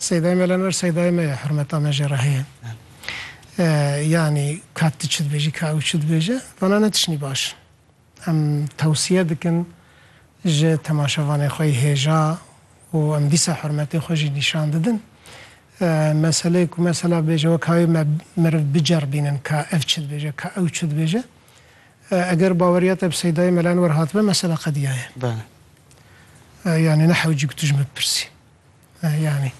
Seydayê me lener seydayê me ye, hurmeta me jê re heye. Yanî ka tu çi dibêjî, ka ew çi dibêje, vana ne tiştî baş in. Em tewsiye dikin ji temaşevanê xwe yî hêja û em dîsa hurmetê xwe jî nîşan didin. Meseleyê ku mesela bêje weka wê me meriv biceribînin ka ev çi dibêje, ka ew çi dibêje. Eger baweriya te bi seydayê me lenwer hatibe, mesela qediyaye. Yanî ne hewcî ku tu ji min bipirsî. Eh yanî.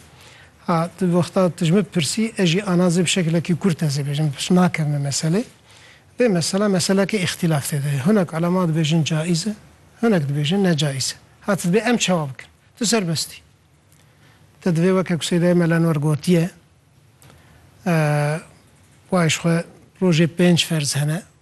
Ha tu wexta tu ji min pirsî ez jî ana zê bi şekilekî kurt ez ê bêjim pişt nakevime meselê. Vê mesela meseleke îxtîlaf tê de ye. Hinek ulema dibêjin caiz e, hinek dibêjin ne caiz e. Ha tu dibê em çawa bikin? Tu serbest î. Te divê weke ku Seydayê Mela Enwer gotiye, eh, wayê ji xwe rojê pênc ferz hene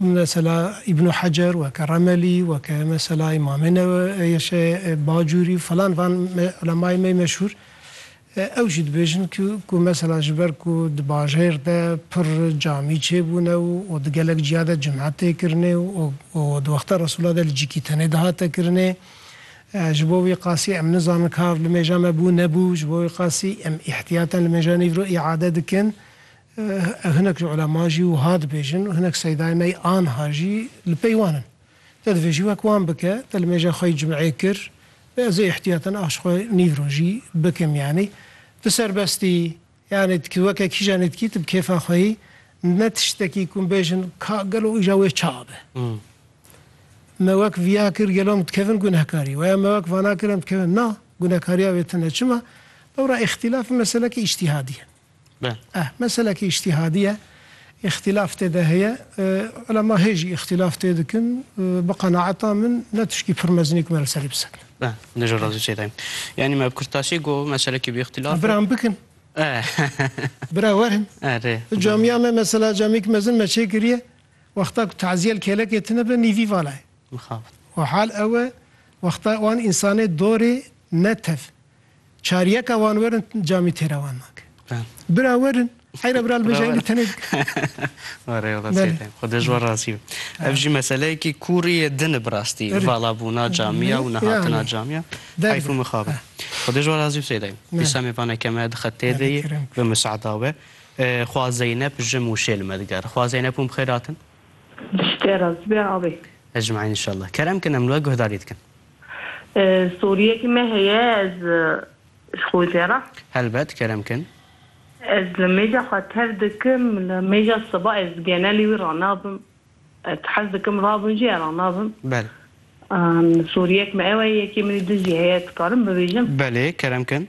Mesela Îbnû Hecer weke Remelî weke mesela Îmamê Neweyşê Bacûrî filan van ulemayê me meşhûr ew jî dibêjin ku ku mesela ji ber ku di bajêr de pir camî çêbûne û û di gelek ciya de cum'e tê kirinê û û di wexta Resûla de li cikî tenê dihate kirinê ji bo wî qasî em nizanin ka ev li mêja me bû nebû ji bo wî qasî em îhtîyaten li mêja nîvro îade dikin Hinek ji ulema jî wiha dibêjin û hinek seydayên me yî anha jî li pey wan in. Te divê jî wek wan bike. Te li mêja xwe yî cim'ê kir. Bê ez ê îhtiyatan aş xwe nîv rojî bikim yanî. Tu serbest î. Yanî tu weke kîjan î dikî tu bi kêfa xwe yî. Ne tiştekî ku him bêjin ka gelo îja wê ça be. Me wek viya kir gelo em dikevin gunehekarî we ya me wek vana kir em dikevin na, gunehekariya wê tune çima? Lewra îxtîlaf û meseleke îctîhadî ye. Eh meselekî îctîhadî ye, îxtîlaf tê de heye. Ulema hê jî îxtîlaf tê dikin. Bi qenaeta min ne tiştî pir mezin e ku me li serî bisekine. Eh, ne jî razî çê de yim. Yanî me bi kurtdaşî got meselekî bi îxtîlaf e. Biran bikin. Eh. Bira werin. Eh rê. Di camiya me mesela camiyek mezin me çê kiriye, wexta ku tazîye li kêlekê tine be nîvî vala ye. Mixabin. Û hal ew e wexta wan însanê dorê ne tev. Çar yeka wan werin camî têra wan nake. Bira werin heyra bira li bêje heyli tenê dike. Xwe dej we razî be. Ev jî meseleyekî kûrî ye din e bi rastî valabûna camîya û nehatina camîya heyf û mixab e. Xwe dej we razî be Seyda Eym. Dîsa me vane ke me dixe tê de yê bi miseada we. Xwa Zeynep ji Mûşê li me digere. Xwa Zeynep hûn bi xêr hatin. Li şitê razî be avê. Ecmaîn inşallah. Kerem kin em li we guhdarî dikin. Soriyekî me heye ez ji xwe jê re. Helbet kerem kin. Ez li mêja xwe tev dikim li mêja siba ez di genelê wî re nabim. Ez hez dikim rabim jî era nabim. Bel. Soriyek me ew e yekê min ê din jî heye ez dikarim bibêjim. Belê kerem kin.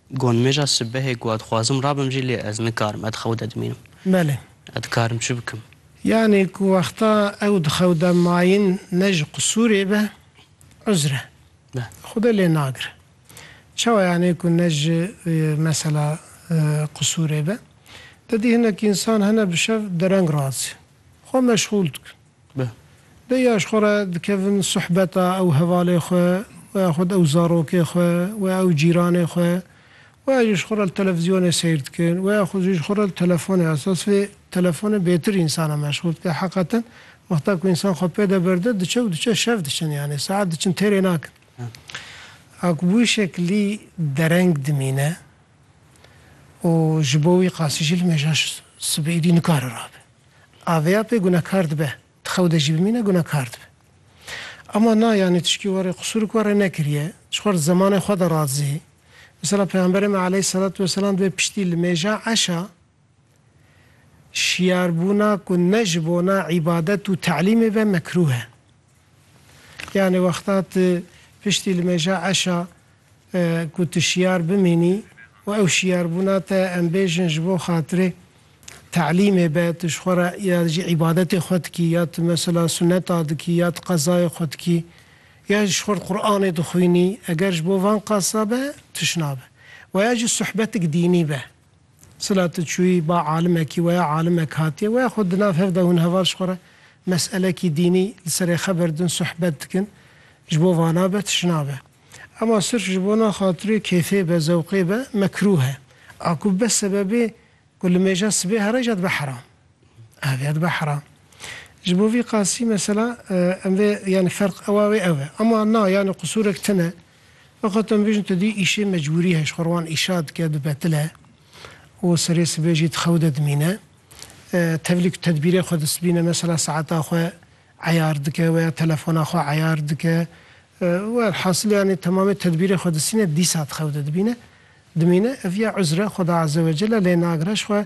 Gonmêja sibehê ku ez xwazim rabim jî lê ez nikarim ez di xew de dimînim. Belê. Ez dikarim çi bikim? Yanî ku wexta ew di xew de mayin ne ji qisûrê be uzr e. Xwedê lê nagire. Çawa yanî ku ne ji mesela qisûrê be? Dedî hinek însan hene bi şev dereng razî xwe meşxûl dikin. Bi. Bêya ji xwe re dikevin suhbeta ew hevalê xwe û ya xwed ew zarokê xwe û ya ew cîranê xwe û ya jî ji xwe re li televîzyonê seyr dikin û ya xwed jî ji xwe re li telefonê esa sivê telefonê bêtir însan e meşxûl dike heqeten wexta ku însan xwe pê de berde diçe û diçe şev diçin yanê saet diçin têrê nakin. A ku bi wî şeklî dereng dimîne û ji bo wî qasî jî li mêja sibê êdî nikare rabe. Aveya pê gunekar dibe. Di xew de jî bimîne gunekar dibe. Ama na yanî tişkî were qisûrik were nekiriye. Ji xwe re di zemanê xwe de radizê. Misala Pêxemberê me aleyhîsselatu weselam dibe piştî li mêja eşa şiyarbûna ku ne ji bona îbadet û te'lîmê be mekrûh e. Yanî wexta tu piştî li mêja eşa ku tu şiyar bimînî û ew şiyarbûna te em bêjin ji bo xatirê telîmê be, tu ji xwe re ya jî îbadetê xwe dikî ya tu mesela suneta dikî ya tu qezayê xwe dikî ya ji xwe re Quranê dixwînî eger ji bo van qasa be tişnabe. Weya jî suhbetik dînî be. Sila tu çûyî ba alimekî weya alimek hatiye weya xwe di nav hev de hûn heval ji xwe re meselekî dînî li serê xebir din suhbet dikin ji bo vana be tişt nabe. Ema sirf ji bona xatirê kêfê be zewqê be mekrûh e. A ku bibe sebebê ku li mêja sibê here jî dibe heram. Ev ya dibe heram. Ji bo vî qasî mesela em vê yanî ferq ewa wê ew e. Ema na yanî qusûrek tune Axwat em bêjin tu dî îşê mecbûrî heye ji xwe re wan îşa dike bibetile û serê sibê jî di xew de dimîne. Tevlî ku tedbîrê xwe distbîne mesela saeta xwe eyar dike weya telefona xwe eyar dike welhasil yanî temamê tedbîrê xwe distîne dîsa di xew de dibîne. Dimîne ev ya uzre Xweda Azewecelle lê nagire ji xwe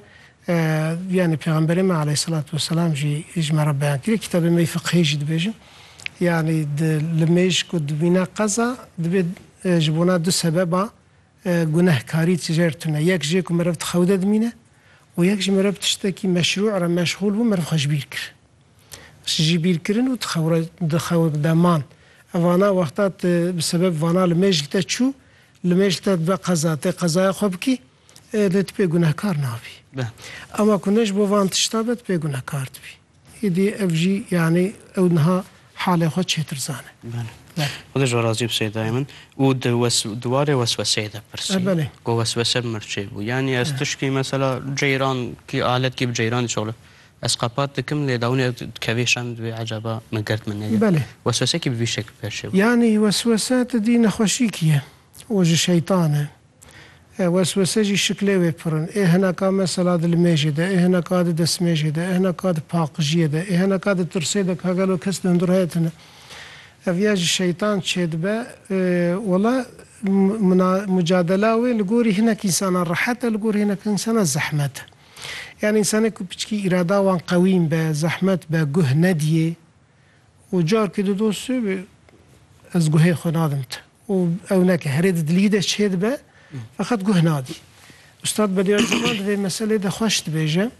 yanî Pêxemberê me aleyhîsselatu wesselam jî ji me re beyan kiriye. Kitabê me yê fiqhî jî dibêjin yanî di li mêj ku dimîne qeza dibê ji bona du sebeba gunehkarî tijêr tune. Yek jê ku meriv di xew de dimîne û yek jî meriv tiştekî meşrû re meşxûl bû meriv xwe ji bîr kir. Ji bîr kirin û di xew re di xew de man. Evana wexta tu bi sebeb vana li mêjik de çû Li mêj te dibe qeza, tê qezaya xwe bikî, lê tu pê gunehkar nabî. Ema ku ne ji bo van tişta be, tu pê gunehkar dibî. Îdî ev jî yanî ew niha halê xwe çêtir zane. Xwedê ji we razî be Seyda min. Û di di warê wesweseyê de pirsî ku weswese bi mir çêbû. Yanî ez tişkî mesela ceyran kî aletkî bi ceyranî şixulin. Ez qepat dikim lê dawînê ez dikevê şand wê ecaba min gird min neyê. Belê. Weswesekî bi vî şekl pêş çê bû. Yanî weswese ti dî nexweşîkî ye û ji şeytan e. Weswese jî şiklê wê pir in. Ê hineka mesela di limêjê de, ê hineka di destmêjê de, ê hineka di paqijiyê de, ê hineka di tirsê de ka gelo kes di hundir heye tune. Ev ya ji şeytan çêdibe. Wala muna mucadela wê li gorî hinek însanan rehet e, li gorî hinek însanan zehmet e. Yan însanê ku piçikî îrada wan qewîm be, zehmet be, guh nediyê û carkê di dostu bi ez guhê xwe nadim ti û ew neke herê di dilî de çê dibe feqet guh nadî. Ustad Bediya Zeman di vê meselê de xweş dibêje.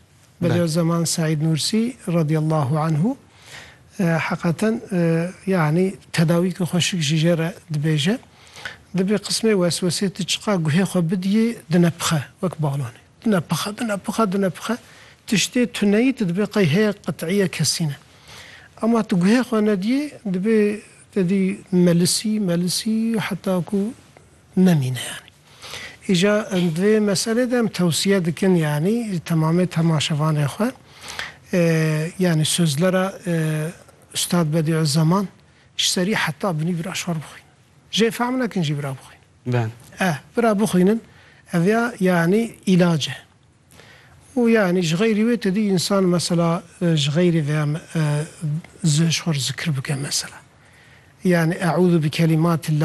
Bediya Zeman Seîd Nûrsî radîyallahu anhu heqaten yanî tedawîkê xwe şik jî jê re dibêje. Dibê qismê weswesê ti çiqa guhê xwe bidiyê dine pixe wek balonê. Nepixe, binepixe, dinepixe, tiştê tuneyî tu dibê qey heye qit'îye kesîne. Ema tu guhê xwe nedîyê, dibê tedî melisî, melisî heta ku nemîne yanî. Îja em di vê meselê de em tewsiye dikin yanî temamê temaşevanê xwe yanî sözlera Ustad Bedî'u Zeman ji serî heta binî bira şor bixwînin. Jê fehm nekin jî bira bixwînin. Ben. Eh, bira bixwînin, ev ya yanî îlac e. Û yanî ji xeyrî wê tedî însan mesela ji xeyrî vê ya ji xwe re zikir bike mesela. Yanî eûzu bi kelîmatillâ.